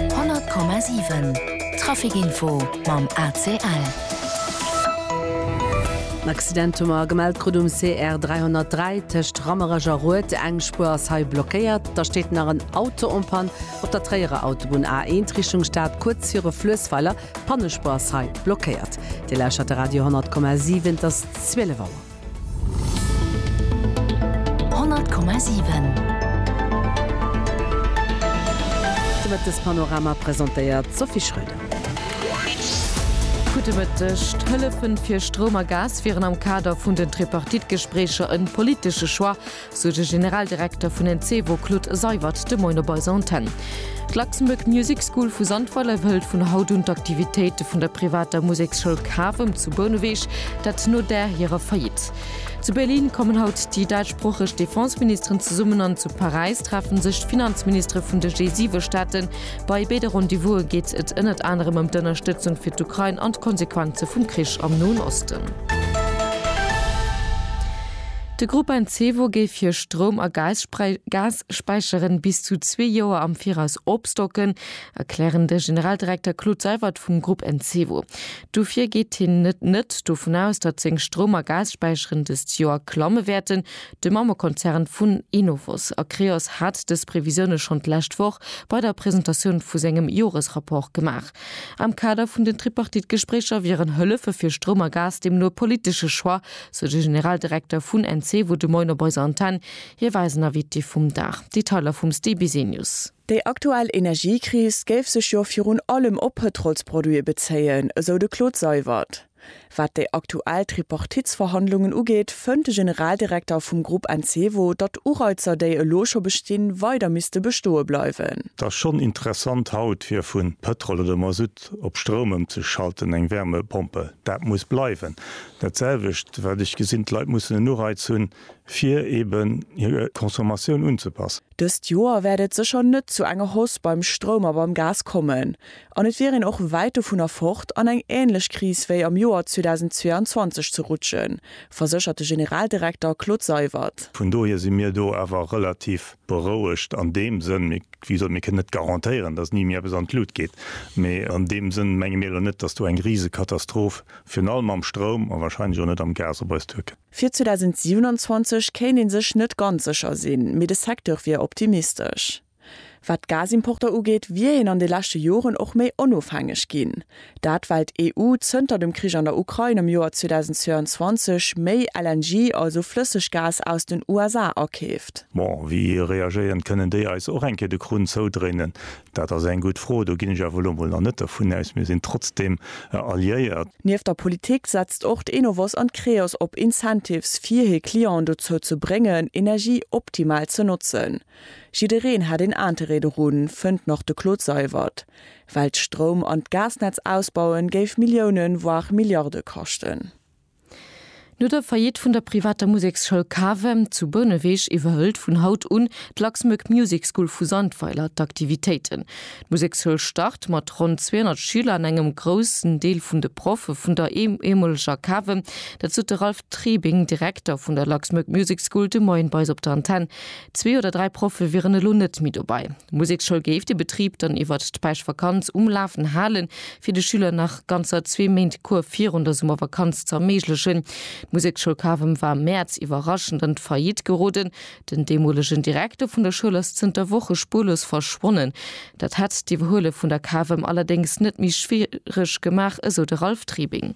100,7 Traficinfo mam ACL. En Accident hu mer gemellt krut um CR 303 tëscht Rammerech a Rued. Eng Spuer ass hei blockéiert. Da steet nach en Auto en Panne op der Tréierer Autobunn A1 Richtung Stad, kuerz viru Fluessweiler. D'Pannespuer ass hei blockéiert. Dir lauschert de Radio 100,7, et ass 12 Auer. 100,7. De Mëttespanorama presentéiert d'Sophie Schröder. Gudde Mëtteg. D'Hëllefe fir Stroum a Gas wieren am Kader vun den Tripartite-Gespréicher e politesche Choix, sou de Generaldirekter vun Encevo Claude Seywert de Moin op eiser Antenn. D'Luxembourg Music School vu Sandweiler wëllt vun haut un d'Aktivitéite vun der privater Museksschoul Cavem zu Bouneweg, dat no där hirer Faillite. Zu Berlin kommen haut déi däitschsproocheg Defenseministeren zesummen an zu Paräis treffen sech d'Finanzministere vun de G7 Staaten. Bei béide Rendez-vouse geet et ënnert anerem ëm d'Ënnerstëtzung fir d'Ukrain an d'Konsequenze vum Krich am Noen Osten. De Grupp Encevo géif hir Stroum a Gasspäicheren bis zu zwee Joer am Viraus opstocken, erklären de Generaldirekter Claude Seywert vum Grupp Encevo. Dofir geet hien net net dovun aus, datt seng Stroum a Gasspäicheren dëst Joer klamme wäerten. De Mammekonzern vun Enovos a Creos hat dës Previsioune schonn d'lescht Woch bei der Presentatioun vu sengem Joresrapport gemaach. Am Kader vun den Tripartite-Gespréicher wieren Hëllefe fir Stroum a Gas deemno e politesche Choix, sou de Generaldirekter vun Encevo de Moin op eiser Antenn. Hie war eisen Invité vum Dag. Detailer vum Steve Bisenius. Déi aktuell Energiekris géif sech jo virun allem op Pëtrolsproduite bezéien, esou de Claude Seywert. Wat déi aktuell Tripartitsverhandlungen ugeet, fënnt de Generaldirekter vum Grupp Encevo, datt Ureizer déi elo scho bestinn, weider misste bestoe bleiwen. Et ass schonn interessant haut fir vu Pëtrol oder Masutt op Stroum ëmzeschalten, eng Wärmepompe, dat muss bleiwen. Dat selwecht, wat ech gesinn, d'Leit mussen en Ureiz hunn, fir eben hir Consommatioun unzepassen. Dëst Joer wäert et sécher net zu enger Hausse beim Stroum a beim Gas kommen. An et wier een och wäit dovunner fort, an eng änlech Kris wéi am Joer 2022 ze rutschen, verséchert de Generaldirekter Claude Seywert. Vun dohier si mir do awer relativ berouegt an deem Sënn, wéi gesot, mir kënnen net garantéieren, datt ni méi eppes an d'Lut geet, mee an deem Sënn menge mir elo net, datt do eng Risekatastroph Virun allem mam Stroum a wahrscheinlech och net am Gas op eis Türken. Fir 2027 kéint ee sech net ganz sécher sinn, mee de Secteur wier optimistesch. Wat d'Gasimporter ugeet, wier een an de leschte Joren och méi onofhängeg ginn. Dat well d'EU zënter dem Krich an der Ukrain am Joer 2022 méi LNG, also Flësseggas aus den USA akeeft. Bon, wéi reagéieren? Kënnen déi eis och eng Kéier de Krunn zoudréinen? Dat ass eng gutt Fro. Do ginn ech awer elo mol nach net dervun aus. Mir sinn trotzdeem alliéiert. Nieft der Politik setzt och d'Enovos an d'Creos op Incentives, fir hir Clienten dozou ze bréngen, Energie optimal ze notzen. Jiddereen hätt een Interêt dorun, fënnt nach de Claude Seywert. Well d'Stroum an d'Gasnetz ausbauen, géif Milliounen, voire Milliarde kaschten. No der Faillite vun der privater Museksschoul Cavem zu Bouneweg iwwerhëlt vun haut un d'Luxmag Music School vu Sandweiler d'Aktivitéiten. D'Museksschoul start mat ronn 200 Schüler an engem groussen Deel vun de Proffe vun der eemoleger Cavem. Dat sot de Ralph Trebing, Direkter vun der Luxmag Music School de Moien bei eis op der Antenn. Zwee oder dräi Proffe wieren elo net méi dobei. D'Museksschoul géif de Betrib dann iwwert d'Päischtvakanz um Lafen halen, fir de Schüler nach ganzer zwee Méint Cours virun der Summervakanz ze erméiglechen. D'Museksschoul Kavem war am Mäerz iwwerraschend an d'Faillite geroden. Den deemolegen Direkter vun der Schoul ass zënter Woche spuerlos verschwonnen. Dat hätt d'Iwwerhuele vun der Kavem allerdéngs net méi schwiereg gemaach, esou de Ralph Tribing.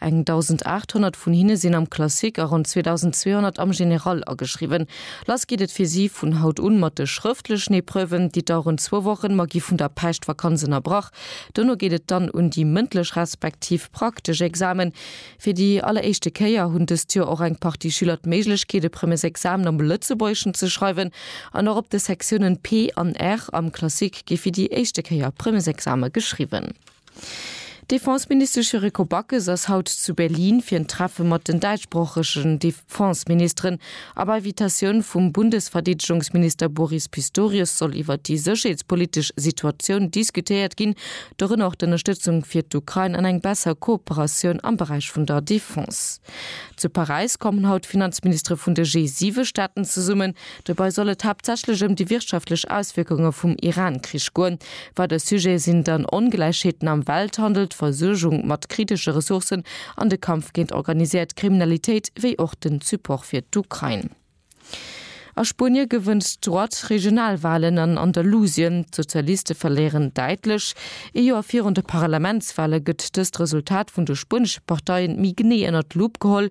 Eng 1.800 vun hinne sinn am Classique a ronn 2.200 am Général ageschriwwen. Lass geet et fir si vun haut un mat de schrëftlechen Epreuven, déi daueren zwou Wochen, ma gi vun der Päischtvakanz ënnerbrach. Dono geet et dann un déi mëndlech respektiv praktesch Examen. Fir déi alleréischte Kéier hunn dëst Joer och eng Partie Schüler d'Méiglechkeet, e Premiers Examen am Lëtzebuergeschen ze schreiwen. An och op de Sektiounen P an R am Classique gi fir déi éischte Kéier Premiers Exame geschriwwen. D'Defenseministesch Yuriko Backes ass haut zu Berlin fir en Treffe mat den däitschsproochegen Defenseministeren. A bei Vitatioun vum Bundesverdeedegungsminister Boris Pistorius soll iwwer déi sécherheetspolitesch Situatioun diskutéiert ginn, dorënner och d'Ënnerstëtzung fir d'Ukrain an eng besser Kooperatioun am Beräich vun der Defense. Zu Paräis kommen haut d'Finanzministere vun de G7-Staaten zesummen, Dobei soll et haaptsächlech ëm déi wirtschaftlech Auswierkunge vum Iran-Krich goen. Weider Sujete sinn dann Ongläichheeten am Welthandel, d'Versuergung mat kritesche Ressourcen an de Kampf géint organiséiert Kriminalitéit, wéi och den Support fir d'Ukrain. A Spuenie gewënnt d'Droite Regionalwahlen an Andalusien, d'Sozialiste verléieren däitlech. Ee Joer virun de Parlamentswahle gëtt dëst Resultat vun de spuenesche Parteien méi genee ënnert d'Lupp geholl.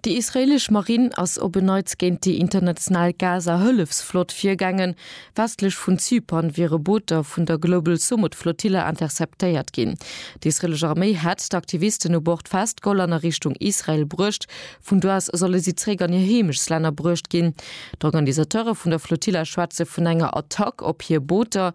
Déi israeelesch Marinn ass op en Neits géint déi international Gaza-Hëllefsflott virgaangen. Westlech vun Zypern wiere Booter vun der Global Sumud-Flottille interceptéiert ginn. D'israeelesch Arméi hätt d'Aktivisten u Bord festgeholl an a Richtung Israel bruecht. Vun do aus solle si zeréck an hir Heemechtlänner bruecht ginn. D'Organisateure vun der Flotilla schwätze vun enger Attack op hir Booter.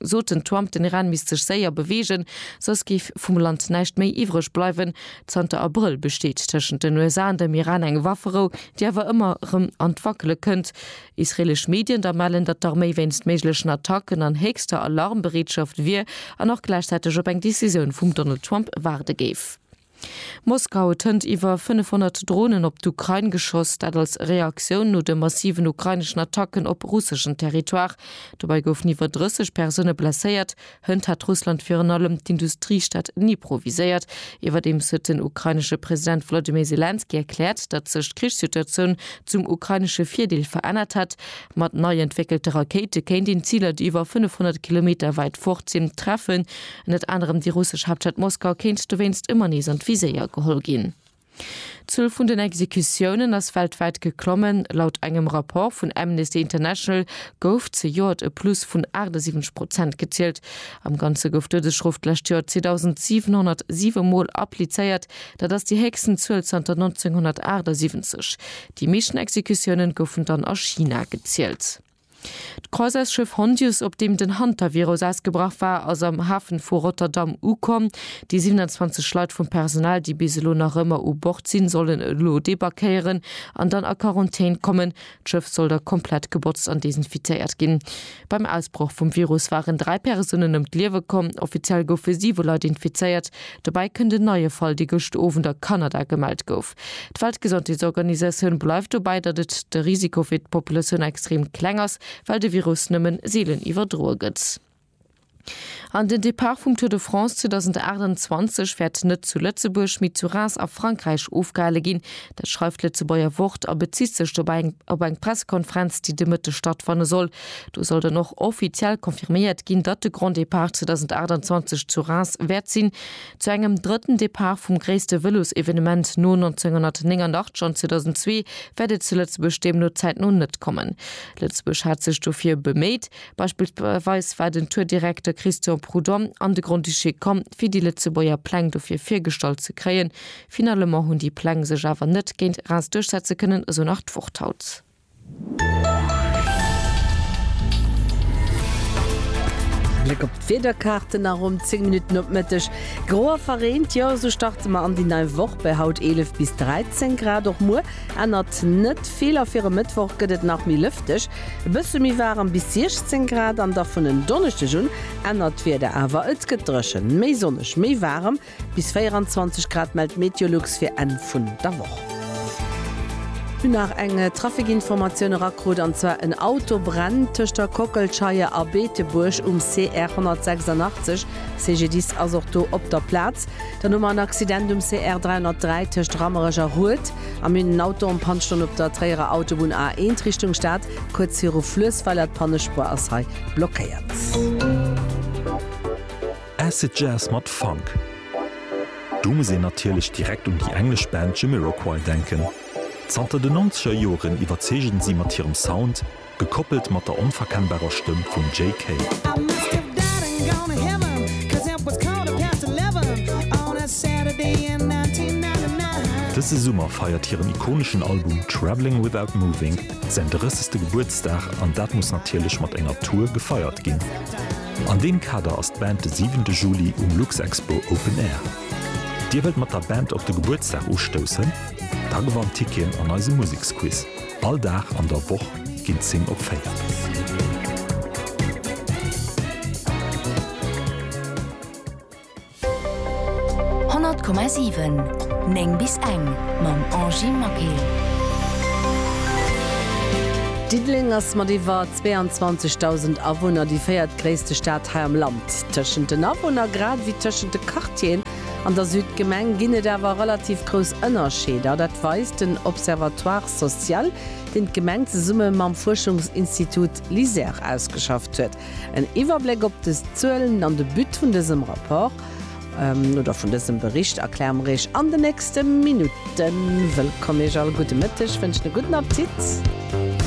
soten d'Twamp, den Iran misst sech séier beweegen, soss géif vum Land näischt méi iwwreg bleiwen. Zanter Abrëll besteet tëschent den USA an dem Iran eng Wafferou, déi awer ëmmer erëm an d'Wackele kënnt. Israeelesch Medien da mellen, datt d'Arméi wéinst méiglechen Attacken an héchster Alarmbereetschaft wier an och gläichzäiteg op eng Decisioun vum Donald Trump waarde géif. Moskau huet hënt iwwer 500 Dronen op d'Ukrain geschoss, dat als Reaktioun no de massiven ukraineschen Attacken op russeschen Territoire. Dobäi goufen iwwer 30 Persoune blesséiert. Hënt hat Russland virun allem d'Industriestad Dnipro viséiert. Iwwerdeems huet den ukrainesche President Volodymyr Selenskyj erkläert, datt sech d'Krichssituatioun zum ukrainesche Virdeel verännert hätt. Mat nei entwéckelte Rakéite kéint een Ziler, déi iwwer 500 Kilometer wäit fort sinn, treffen. Ënnert anerem déi russesch Haaptstad Moskau kéint dowéinst ëmmer nees an d'Viséier geholl ginn. D'Zuel vun den Exekutiounen ass weltwäit geklommen. Laut engem Rapport vun Amnesty International gouf zejoert e Plus vun 78 Prozent gezielt. Am Ganze gouf d'Doudesschrof d'lescht Joer 2.707 Mol applizéiert, dat ass déi héchsten Zuel zanter 1978. Déi meeschten Exekutiounen goufen dann a China gezielt. D'Croisersschëff Hondius, op deem den Hantavirus ausgebrach war, ass am Hafen vu Rotterdam ukomm. Déi 27 Leit vum Personal, déi bis elo nach ëmmer u Bord sinn, sollen elo debarquéieren an dann a Quarantän kommen. D'Schëff soll da komplett gebotzt an desinfizéiert ginn. Beim Ausbroch vum Virus waren dräi Persounen ëm d'Liewe komm. Offiziell goufe siwe Leit infizéiert. Dobäi kënnt en neie Fall, dee gëscht Owend a Kanada gemellt gouf. D'Weltgesondheetsorganisatioun bleift dobäi, datt et de Risiko fir d'Populatioun extrem kleng ass, well de Virus nëmmen seelen iwwerdroe gëtt. An den Depart vum Tour de France 2028 wäert net zu Lëtzebuerg, mee zu Reims a Frankräich ofgehale ginn. Dat schreift d'Lëtzebuerger Wort a bezitt sech dobäi op eng Pressekonferenz, déi de Mëtteg stattfanne soll. Do soll dann och offiziell confirméiert ginn, datt de Grand Depart 2028 zu Reims wäert sinn. Zu engem drëtten Depart vum gréisste Vëlosevenement no 1989 an 2002 wäert et zu Lëtzebuerg deemno zäitno net kommen. Lëtzebuerg hat sech dofir beméit. Beispillsweis war den Tour-Direkter Christian Prudhomme an de Grand-Duché komm, fir déi Lëtzebuerger Pläng dofir virgestallt ze kréien. Finalement hunn déi Pläng sech awer net géint REELS duerchsetze kënnen, esou nach d'Wort haut. Bléck op d'Wiederkaarten a ronn 10 Minutten op Mëtteg. Gro a verreent, jo esou starte mer an déi nei Woch bei haut 11 bis 13 Grad. Och muer ännert net vill a fir e Mëttwoch gëtt et nach méi lëfteg, e bësse méi waarem bis 16 Grad. An da vun en Donneschdeg un ännert d'Wieder awer, et gëtt dréchen, méi sonneg, méi waarem. Bis 24 Grad mellt d'Meteolux fir Enn vun der Woch. Hunn nach eng Trafikinformatioun erakrut, an zwar en Auto brennt tëscht der Kockelscheier a Beetebuerg um CR 186. CGDIS ass och do op der Plaz. Dann hu mer en Accident um CR 303 tëscht Rammerech a Rued a mir hunn en Auto en Panne stoen op der Tréierer Autobunn A1 Richtung Stad, kuerz viru Fluessweiler. D'Pannespuer ass hei blockéiert. Acid Jazz mat Funk. Do muss een natierlech direkt un déi englesch Band Jamiroquai denken. Zanter den nonzeger Joren iwwerzeegen si mat hirem Sound, gekoppelt mat der onverkennbarer Stëmm vum Jay Kay. Dëse Summer feiert hiren ikoneschen Album Travelling Without Moving säin 30. Gebuertsdag an dat muss natierlech mat enger Tour gefeiert ginn. An deem Kader ass d'Band de siwente Juli um Luxexpo Open Air. Dir wëllt mat der Band op de Gebuertsdag ustoussen? Da gewannt Ticketen an eisem Museksquiz. All Dag an der Woch ginn 10 op 4. 100,7 9 bis eng mam Angie Maquet. Diddeleng ass mat iwwer 22.000 Awunner déi véiertgréisste Stad hei am Land. Tëschent den Awunner, grad ewéi tëschent de Quartieren an der Südgemeng, ginn et awer relativ grouss Ënnerscheeder. Dat weist den Observatoire social, deen d'Gemeng zesumme mam Fuerschungsinstitut LISER ausgeschafft huet. En Iwwerbléck op des Zuelen an de But vun dësem Rapport, oder vun dësem Bericht, erkläre mer Iech an den nächste Minutten. Wëllkomm Iech all, gudde Mëtteg, wënschen e gudden Appetit.